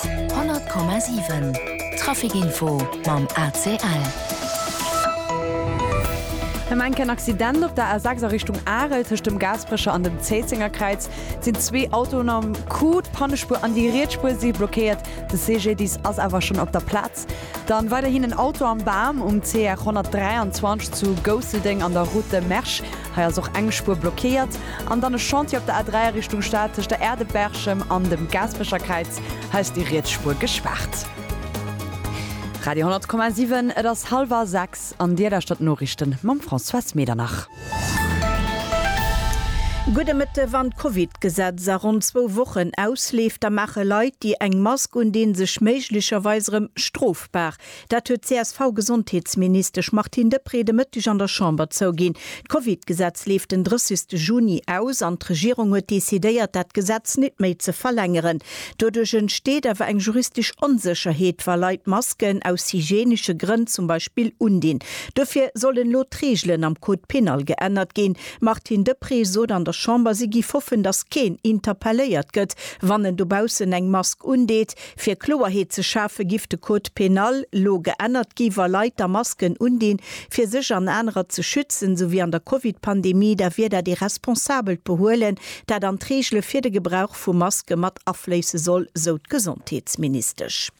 100,7 Trafic info mam ACL. Ëm enk en Accident op der A6 a Richtung Arel, tëscht dem Gaasperecher an dem Zéizengerkräiz sinn zwee Autoen am Coup. D'Pannespuer an déi riets Spuer si blockéiert. De CGDIS ass awer schonn op der Plaz. Dann weiderhin en Auto am Bam um CR 123 zu Gousseldeng an der Route de Mersch. Hei ass och eng Spuer blockéiert. An dann e Chantier op der A3 a Richtung Stad tëscht der Aire de Berchem an dem Gaasperecherkräiz. Hei ass déi riets Spuer gespaart. Radio 10,7, et ass hallwer sechs an Dir lauschtert d'Noriichten mam Françoise Medernach. Gudde Mëtte, Wann d'Covid-Gesetz a ronn zwou Wochen ausleeft, da maache Leit, déi eng Mask un, dee sech méiglecherweis erëm strofbar. Dat huet d'CSV-Gesondheetsministesch Martine Deprez de Mëtteg an der Chamber zouginn. D'Covid-Gesetz leeft den 30 ste Juni aus an d'Regierung huet decidéiert, dat Gesetz nit méi ze verlängeren. Doduerch entsteet awer eng juristesch Onsécherheet, wa Leit Masken aus hygienesche Grënn zum Beispill undinn. Dofir sollen elo d'Reegelen am Code pénal geännert ginn. D'Martine Deprez sot an der Chamber, si giff hoffen, datt keen interpelléiert gëtt, wann en dobaussen eng Mask undeet. Fir Kloerheet ze schafe giff de Code pénal lo geännert gi wa Leit da Masken undinn fir sech an anerer ze schützen, sou wéi an der Covid-Pandemie, da wier dat ee responsabelt Behuelen dat an d'Reegele fir de Gebrauch vu Maske mat afléisse soll, sou d'Gesondheetsministesch.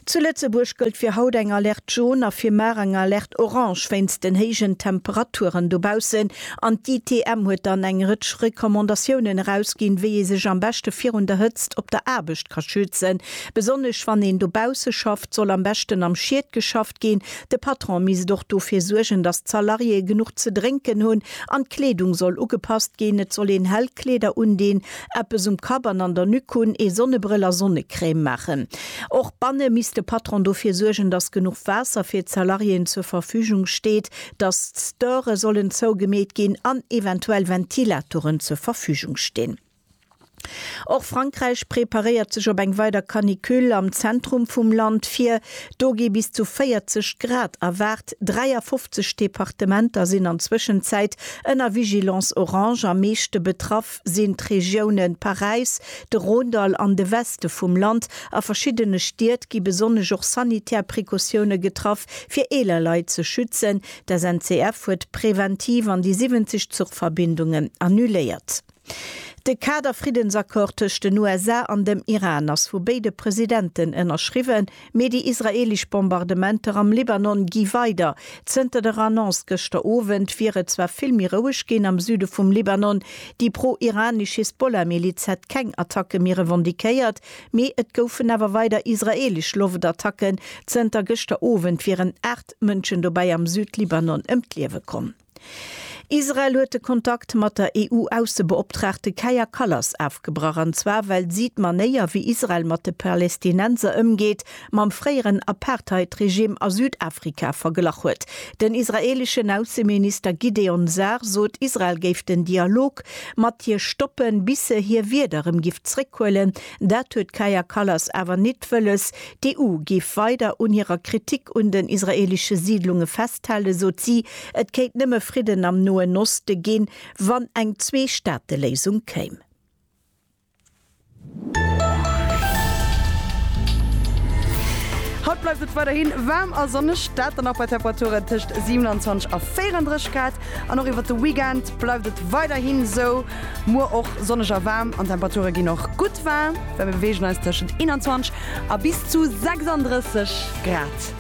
Zu Lëtzebuerg gëllt fir haut eng Alerte Jaune a fir mar eng Alerte Orange wéinst den héijen Temperaturen dobaussen. An d'ITM huet dann eng Rëtsch Recommandatiounen erausginn, wéi ee sech am beschte virun der Hëtzt op der Aarbecht ka schützen. Besonnesch wann een dobausse schafft, soll am beschten am Schied geschafft ginn. De Patron misst och dofir suergen, datt d'Salariéë genuch ze drénken hunn. An d'Kleedung soll ugepasst ginn. Et soll een hell Kleeder undinn, eppes um Kapp an an der Nuque hunn, ee Sonnebrëll a Sonnecrème maachen. Och banne misst de Patron dofir suergen, datt genuch Waasser fir d'Salariéen zur Verfügung steet. dass d'Störe sollen zougemeet ginn an eventuell Ventilatoren zur Verfügung stinn. Och Frankräich preparéiert sech op eng weider Canicule. Am Zentrum vum Land vir, do gi bis zu 40 Grad erwaart. 53 Departementer sinn an Zwëschenzäit ënner Vigilance orange, am meeschte betraff Ost sinn d'Regioune Paräis, de Rhône-Dall an de Weste vum Land. A verschiddene Stied gi besonnesch och sanitär Precautioune getraff, fir eeler Leit ze schützen. D'SNCF huet preventiv an déi 70 Zuchverbindungen annuléiert. De Kader-Friddensaccord tëscht den USA an dem Iran ass vu béide Presidenten ënnerschriwwen. Mee déi israeelesch Bombardementer am Libanon gi weider. Zënter der Annonce gëschter Owend wier et zwar vill méi roueg ginn am Süde vum Libanon. Déi pro-iranesch Hisbollah-Miliz hätt keng Attacke méi revendiquéiert, mee et goufen awer weider israeelesch Loftattacken. Zënter gëschter Owend wieren 8 Mënschen dobäi am Süd-Libanon ëm d'Liewe komm. Israel huet de Kontakt mat der EU-Aussebeoptraagte Kaja Kallas ofgebrach, an zwar well si d'Manéier, wéi Israel mat de Palestinenser ëmgeet, mam fréieren Apartheid-Regime a Südafrika verglach huet. Den israeeleschen Ausseminister Gideon Sa'ar sot, Israel géif den Dialog mat hir stoppen, bis se hir Wierder rëm giff zréckhuelen. Dat huet d'Kaja Kallas awer nit wëlles. D'EU giff weider un hirer Kritik un den israeelesche Siidlunge festhalen, sot si. Et kéint nëmme Fridden am Noen Oste ginn, wann eng Zwee-Staate-Léisung kéim. Haut bleift et weiderhi waarm a sonneg, dat dann och bei Temperaturen tëscht 27 a 34 Grad. An och iwwert de Weekend bleift et weiderhi sou, muer och sonneg a waarm an d'Temperature ginn och gutt war, well mir beweegen eis tëschent 21 a bis zu 36 Grad.